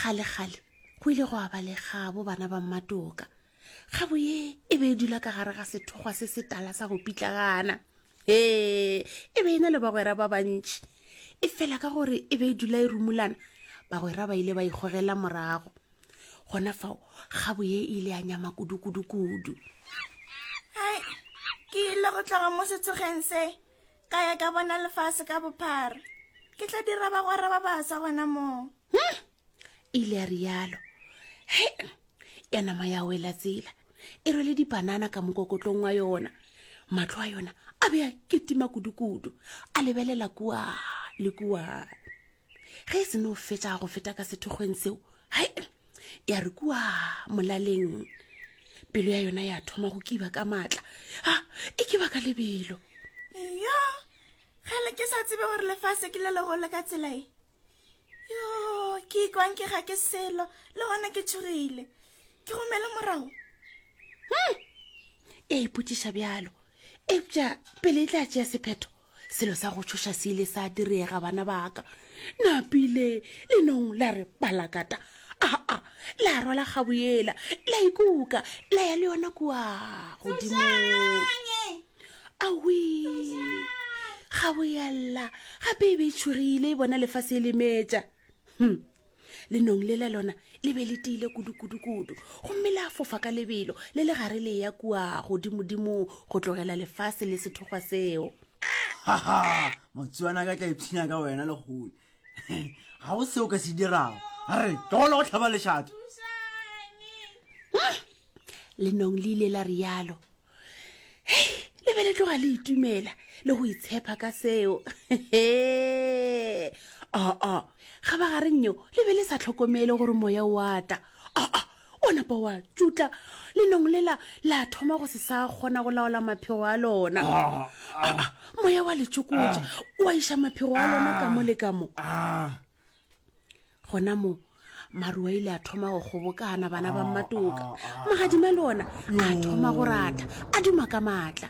gale-gale go ile go aba legabo bana ba mmatoka gabo ye e be e dula ka gare ga sethokgwa se se tala sa go pitlagana ee e be e na le bagwera ba bantši e fela ka gore e be e dula e rumulana bagwera ba ile ba ikgogela morago gona fao gabo ye e ile ya nyama kudu-kudu-kudu ke ile go tlaga mo setsogeng se Ka ya ka bona lefase ka bophara. Ke tla dira bagwera ba baswa gona moo. Hmm, ile ya rialo. He, ya nama ya wela tsela. E rwele dipanana ka mokokotlong wa yona. Matlo a yona a be a ketima kudu-kudu. A lebelela kua le kua. Ge e se no fetša go feta ka sethokgweng seo, hai, ya re kua molaleng pelo ya yona ya thoma go kiba ka maatla a e kiba ka lebelo yo gale ke sa tsebe gore lefase ke le legolo ka tsela e yo ke ikwang ke ga ke selo le gona ke tshogile ke gomele morago hmm. e ipotšiša bjalo eupša pele e tla tšea sephetho selo sa go tšhoša se ile sa direga bana baka napile le nong la re palakata aa la rwala gaboela la ikuka la ya le yona kua godimong awi gaboela gape e be e tšhogile e bona lefase e lemetša hm lenong le le lona le be le tiile kudu-kudu-kudu gomme le a fofa ka lebelo le le gare le ya kua godimodimong go tlogela lefase le sethokgwa seo haha motswana ka tla ipshina ka wena le gole ga go seo ka se dirago a re ke gona go tlhaba lešato lenong le ile la rialo hei le be le tloga le itumela le go itshepa ka seo aa ga ba gareng yo le be le sa tlhokomele gore moya wa tla aa o napa wa tšutla le nong lela la thoma go se sa kgona go laola maphego a lona moya wa letsokotša wa iša maphego a lona ka mo le ka mo gona mo maruwa ile a thoma go kgobokana bana ba mmatoka ah, ah, ah. magadima le ona a thoma go ratha a duma ka maatla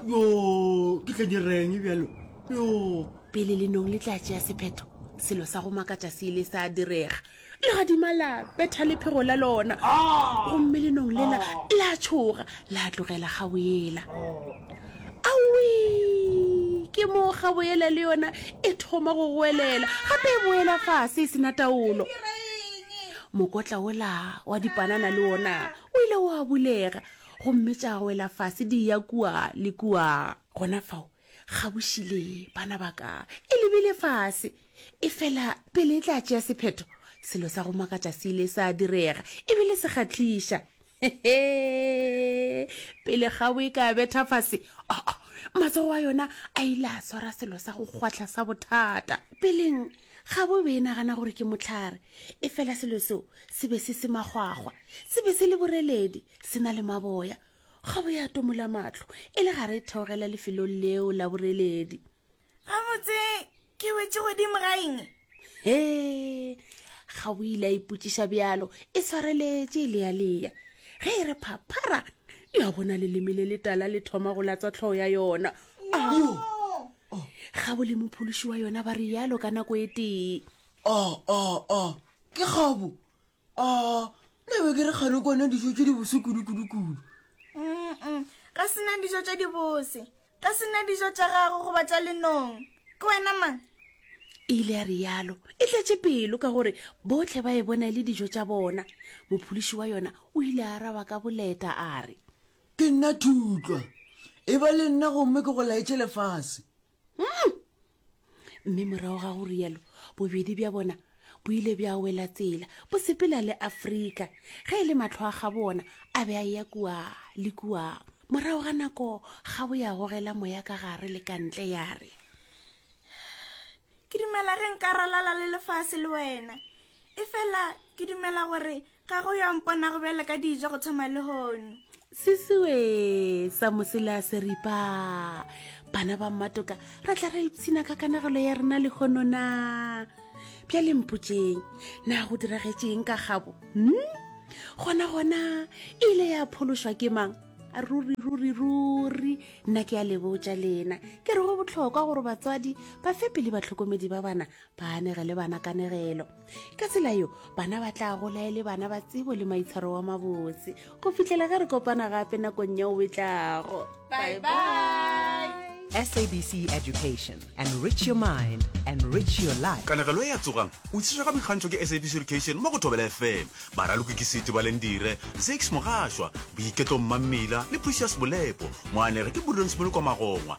yo ke tla direng bjalo yo pele lenong le tla tšea sephetho selo sa go makatša se ile sa direga legadima la betha lephego la lona gomme lenong lela la tshoga la tlogela ga o ela Awii! Ke moo kgabo yela le yona e thoma go goelela, gape e boela fase e sena taolo. Mokotla ola wa dipanana le ona o ile wa bulega gomme tša wela fase di ya kua le kua. Gona fao Gabošile, bana ba ka, e lebile fase. Efela pele e tla tšea sephetho, selo sa go makatša se ile sa direga, e bile se kgahliša. Hehe! Pele kgabo e ka betha fase, oh, matsogo a yona a ile a swara selo sa go kgwahla sa bothata. Peleng, kgabo e be e nagana gore ke mohlare, efela selo seo se be se se makgwakgwa. Se be se le boreledi, se na le maboya. Kgabo ya tomola mahlo e le gare e theogela lefelong leo la boreledi. gabotse ke wetse godimo ga eng he ga o ile a ipotsiša bjalo e swareletše e lealeya ge e re phaphara ya bona leleme le letala le thoma go latswa tlhogo ya yona ga bo le mophološi wa yona ba re yalo ka nako e tee o o o ke kgobo a nna be ke re kgale kwana dijo tse di bose kudu-kudu-kudu ga se nna dijo tse di bose ga se nna dijo tsa gago goba tsa lenong ke wena mang e ile ya rialo e tletše pelo ka gore botlhe ba e bona e le dijo tsa bona mopholiši wa yona o ile a araba ka boleta a re ke nna thutlwa e ba le nna gomme ke go laetse lefase mm! mme morago ga go rialo bobedi bja bona bo ile bja wela tsela bo sepela le afrika ge e le matlho a ga bona a be a ya kua le kua morago ga nako ga bo ya gogela moya ka gare le ka ntle ya re ke dumela ge nka ralala le lefase le wena e fela ke dumela gore Ga go yo mponago bjale ka dijo go thoma lehono. Sisiwe sa mosela seripa. Bana ba mmatoka ra tla ra ipshina ka kanagelo ya rena lehono na. Bja lempotseng na go diragetseng ka gabo. Hmm? Gona gona e ile ya phološwa ke mang? ruri ruri ruri nna ke a lebotša lena ke re go botlhokwa gore batswadi ba fe pele batlhokomedi ba bana ba anege le bana kanegelo ka tsela yo bana ba tla gola e le bana ba tsebo le maitshwaro wa mabotse go fitlhela ge re kopana gape nakong ya o betlago bye bye sabc education enrich your mind enrich your life kanegelo e ya tsogang o tshiša ga boikgantšho ke sabc education mo go thobela fm baraloki ke sete ba lendire zix mogašwa boiketlo mmammila le precious bolepo moanege ke burdonsmolokwa magongwa